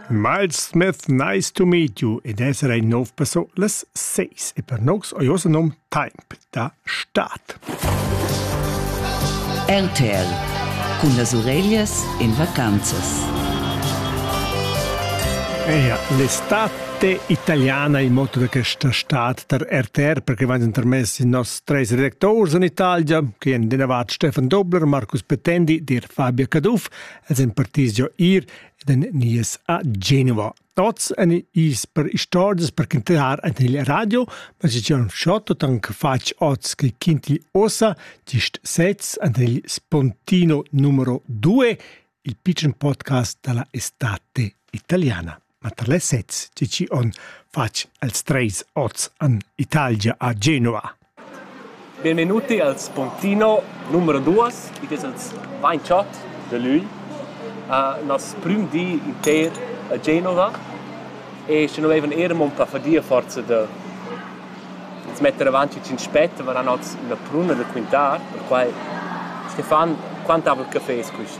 Miles Smith Nice to meet you ed essere in nov perso las 6 e per nox ho ossa nom temp da start. RTL cun las ureglias in vacanzas. Eia, l'estate italiana il motto da questa stat der RTR perché vanno intermessi i nostri tre redactori in Italia, che hanno rinnovato Stefan Dobler, Marcus Petendi, dir Fabio Caduff els han partis giò ir ed han nies a Genova. Tots han is per istorgias per cantar ant il radio, ma se Gian Schotto tank fac oz che kinti osa gist sez ant il Spontino numero 2, il pitchen podcast della estate italiana. Ma tar les sezs tgi chi on fatg els treis oz an Italia a Genua. Benvenuti al Spontino numero 2, id es els 28 de lui, uh, nas prüm di inter a Genova e sche noi avevan ermo un pa fadia forza de metter avanti cin spett, ma eran oz una pruna da quintar, per quai Stefan, quant havel café es quist?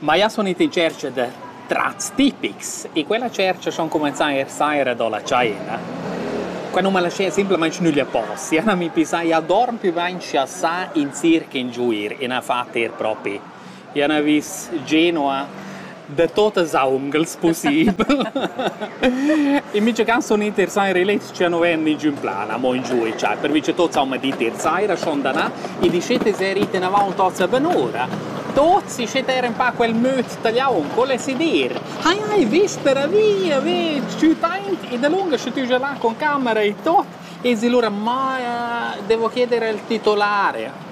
Ma ia sun ita in tschercha da trats tipics e quella tschercha sun cumenzà eir saira do la tschaina. Qua nun m'ha lasché simplamaing schnüglir post. Ia n'ha mi pisà, ia dorm pü bain scha sa in circa ingiuir e n'ha fat eir propi. Ia n'ha vis Genua da tuot els aungels pussibel. E mica ca sun ita eir saira lì Scha nu ven il giün plan amo in giù e cha pervi cha tuots haun dit ier saira schon danà, il discetes era ite inavant tots a ben'ura. Tuots i scet eir ün pa quel möd tagliaun, col es i dir. Hai hai vis per la via, ve tschüt aint e dalunga sche tü già là con camera e tot, esi lura ma devo chieder al titolare.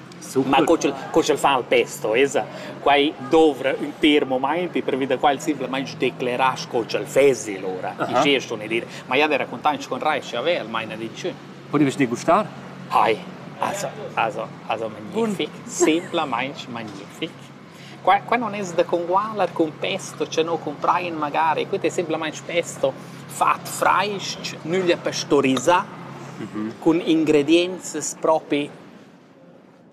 Ma co ch'el, co ch'el fa il testo, esa quai dovra ün pêr momainti pervi da qual simplamaing declerà sco ch'el fezi lura. Aha. Ischè ston i dir. Ma ja d'he racontainch con rai scha vè el maina d'inchün. Podiast dir gustar? Hai. Also, also, also magnific. Simplamaing magnific. Qua, qua non es da congualer cun pesto cha no cumprain magari. Quid es simplamaing pesto fat frais-ch, nüglia pastorisà, cun ingredienzas propi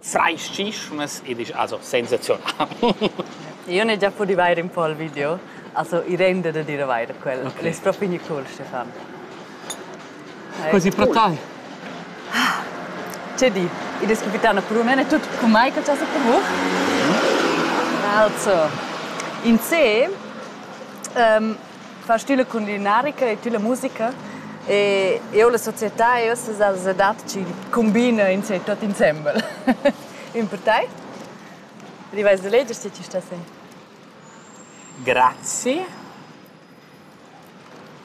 Fraischischunas ed isch also sensazional. Io n'he già pudü vair ün po al video, also i renda da dir avair quel. Okay. El es propi gnü cool, Stefan. Quasi pro tai. Che di, id es capitano Krumen, è tut cu mai che cha sa provo? Also, in se, um, fa stile culinarica e tüla musica e eu la società e uossa s'as adat chi cumbina in se tuot insembel. Ün per tai? Ti vais da leger se ti stas in. Grazie.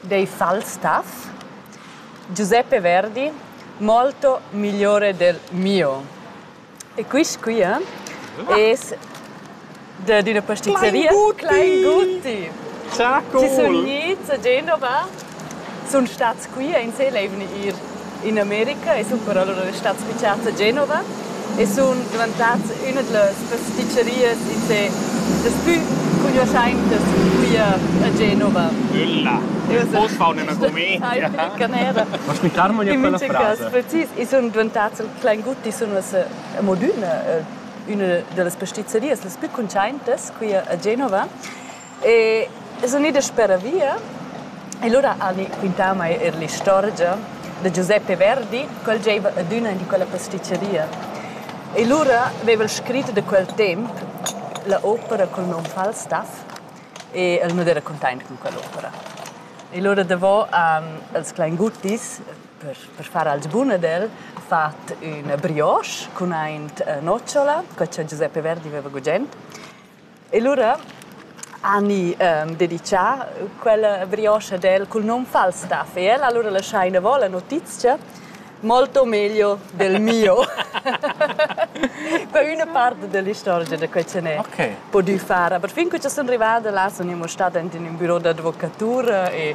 Dei Falstaff. Giuseppe Verdi, molto migliore del mio. E quist quia es dad üna pastizeria Kleinguti. Cha cool. Chi sun gnits a Genova, sun stats qui insel e vegni ir in America e sun però lura stats fichats a Genova e sun dvantats üna da las pastizerias insè das plü cugnuoschaintas quia a Genova. Ülla. Poss far üna comedia. Canera. Mas mi carma gnir quella frasa. Precis, i sun dvantats al Klaingut di sun uss amo d'üna, üna da las pastizzerias las plü cuntschaintas qui a Genova e sun idas speravia e lura hani quintà a mai eir l'istorgia da Giuseppe Verdi, quel giaiva adüna in di quella pastizzeria. E lura vaiva el scrit da quel temp la opera cul nom Falstaff e el nu d'era cuntaint con quell'opera. E lura davo han els Klainguttis Per, per far als bun ad el, ha fatg üna brioche cun aint nocciola, co cha Giuseppe Verdi veva gugent. E lura hani ehm, dedichà quella brioche ad el cul nom False Stuff e el allura lascià inavò la notizia molto meglio del mio. per üna part dell'istorgia da quei che ne okay. podü far. Aber fin che ci sono arrivata là sono io stada in un bureau d'avvocatura e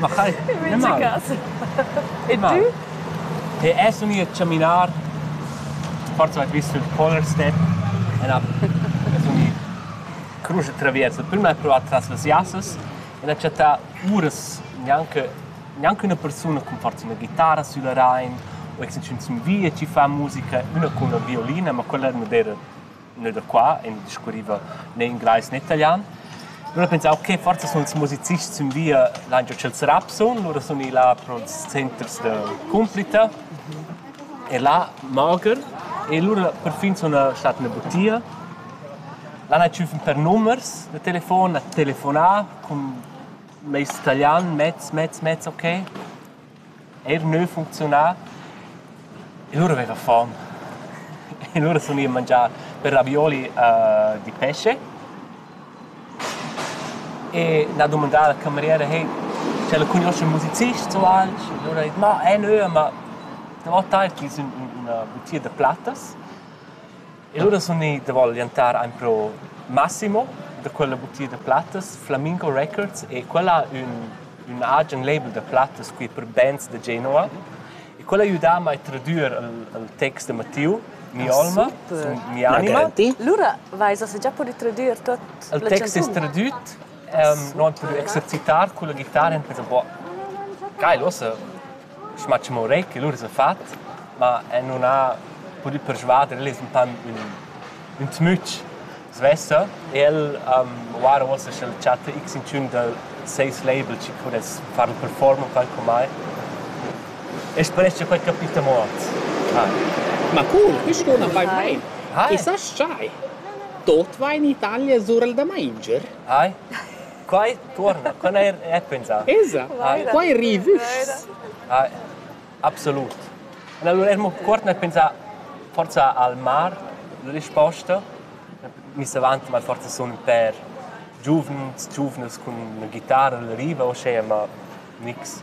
Ma chai, nicht mal. E tu? E es vegni a caminar forza vet vis sul collar step e na es vegni crusch traviers. Prima è provat tras las jassas e n'ha chattà uras gnanca gnanca üna persuna cum forza üna ghitarra sülla rain o exinchün sün via chi fa musica, üna cun una violina, ma quella nun era ne da qua e mi discurriva né inglais né italian. Lura pensau, okay, forza sun ils musicists sün via l'han giò tschels Rapson, lura sun i là pro'ls centers da Cumplita e là mager e lura per fin suna stat üna butia. Là n'ha tschüfen per numers da telefon, a telefonà cun meis italian, mezz, mezz, mezz, okay. Eir gnü funcziunà e lura aveva fom e lura sun i a mangiar per ravioli di pesce e n'ha dumandà la cameriera hey sch'ella cugnuoscha ün musicist o alch e lura ha dit ma eh nö ma davo tai chi sun üna butia da plattas E lura sun i da volientar aimpro Massimo da quella butia da plattas Flamingo Records e quella ün ün agen label da plattas qui per bands da Genua e quella ha aidà mai a tradüer il il text da Mattiu Mi olma, sun mi anima. Lura vais has già pudü tradüer tuot il text es tradüt, no han pudü exercitar culla ghitara e han pensa, boh, geil, uossa Schmatsch Murray che lur sa fat, ma el nun ha pudü persvader el es ün pan ün, ün tmütsch svessa e el um, uossa uossa sch'el chatta x inchün da seis label chi pudess farl performer qualchomai. E sperescha quai capita muot. Ha. Ma cur quist on am vain main. Hai. E sast schai? Tuot va in Italia sur il da mainger. Hai. Quai tuorna, quella è è pensà. Esa, quai rivuschs. absolut. Allora emo cuort nel pensà forza al mar, la risposta. Miss avant mal forza sun per giuvens, giuvnas cun la ghitarra, la riva, uschè, ma nix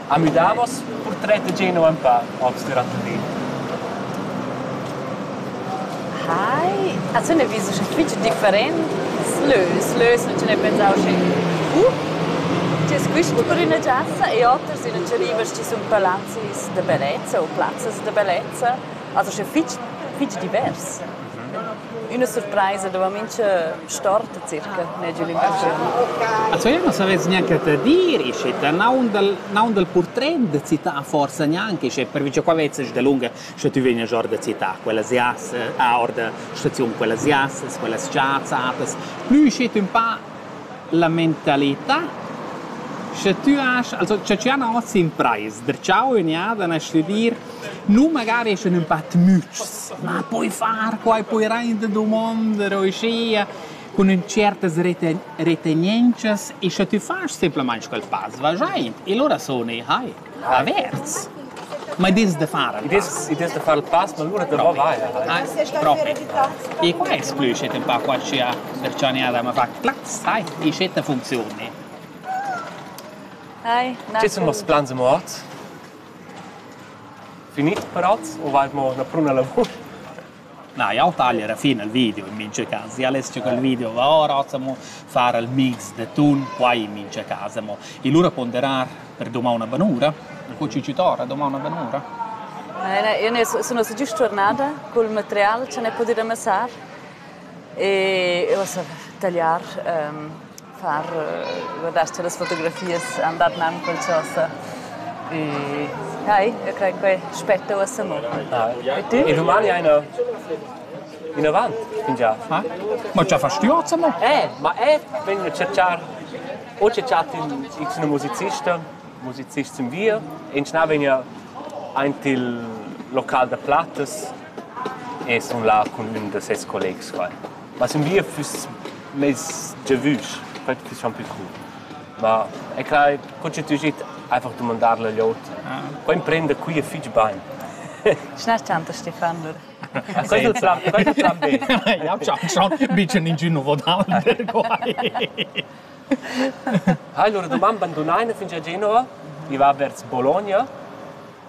Ha miu davos purtret da Geno empau oz duront il di. Hi, a tuna vis uschè fitg different lös, lös non ce ne pensau schi. Uh, ti es quist buca üna giassa e oters üna rivas ci sun palazis da bellezza o plazzas da bellezza, also sche fitg fitg divers. Üna surpraisa dava mincha storta circa, n'ha giù l'impressiun. Also io non savess neanche te dir, isce ta naun dal naun dal portret da città forsa neanche, isce pervi cha qua vezzas da lunga scha tü vegnas or da città, quellas ias ah or da staziun, quellas ias, quellas chazzatas, plü schi tü ün pa la mentalità Sche tü has, also cha tü han hoz impraис, der chau in ja, dann hast du dir, nu magari eschan ün pa tmütschs, Ma poi far quai poi rein da dumondir uschia cun ün tschertas retenientschas e sche tü fast simplamaing quel pass vagiaint e lura suni hai avers. Ma i dess da far il pass. I dess da far il pass, ma lura davo vai. Propi. E qua es plü schet ün pa qua sia perchaniada m'ha fat plaz, sai, e schetta funzioni. Hi. Chi sun noss plans amo ot? Finit prazs u vain mo üna pruna lavur? Na, jau tagl era fin al video in mincha cas. Ja less giocar il video da ora, mo far il mix da tun, quai in mincha cas. Mo e lura ponderar per dumang una banura. Co ci ci torna dumang una banura? Era, io ne, sono già tornata col material che ne potrei amassare E uossa tagliar, far guardascha las fotografias, andar nan col chosa. E hai, eu crei que spetta uossa mo. E tu? In Rumania ina ina vant, fingià. Ma? Ma già fast tu oz mo? Eh, ma eh, vegn a cerchar o cerchar in x musicista, musicist zum wir, in schnà vegna aint il local da plattas e sun là cun ün da seis collegs qua. Ma sün via füss mez giavüsch, quai fiss gnanc pü trù. Ma e crai, co che tü git einfach dumandar la gliota. Qua imprenda quia fich bain. Schna tanto Stefan lur. Quel plan, quel plan B. Ja hab schon schon bisschen in Gino Rodal quai. Hai lura doman bandunaina fingià Genova, i va vers Bologna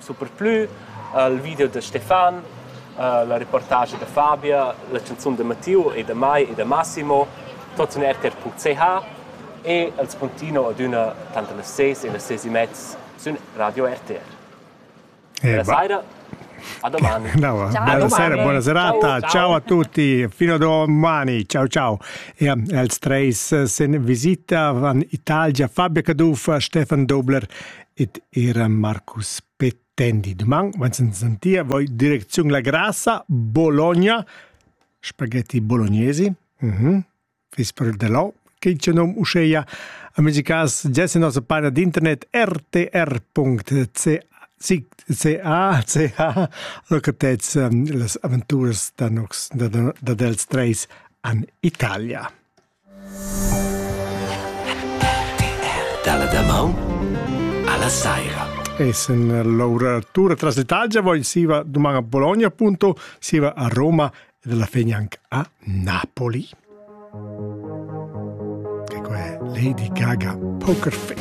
superplü al video da Stefan, uh, la reportage da Fabia, la canzun da Mattiu e da Mai e da Massimo, tots in rtr.ch e als puntino ad üna tanter las ses e las ses e mezz sün Radio RTR. Eh, Buona sera. A domani. No, buonasera, buona serata. Ciao, ciao a tutti. Fino a domani. Ciao, ciao. E els treis eh, se visita van Italia Fabio Caduff, Stefan Dobler ed era Marcus Petendi. Duman, wenn sen sentia voi direcziun la grassa Bologna, spaghetti bolognesi. Mhm. Mm Vis per de lau, che c'è nom usceia. Amici cas, gesti nostra página d'internet rtr.ca ca, ca locatez um, las aventuras da nox da, da, da dels treis an Italia. Dalla damaun alla saira. Essen l'oratura tras l'Italia va in siva domani a Bologna appunto, siva a Roma ed alla fine anche a Napoli. Ecco è Lady Gaga Poker Face.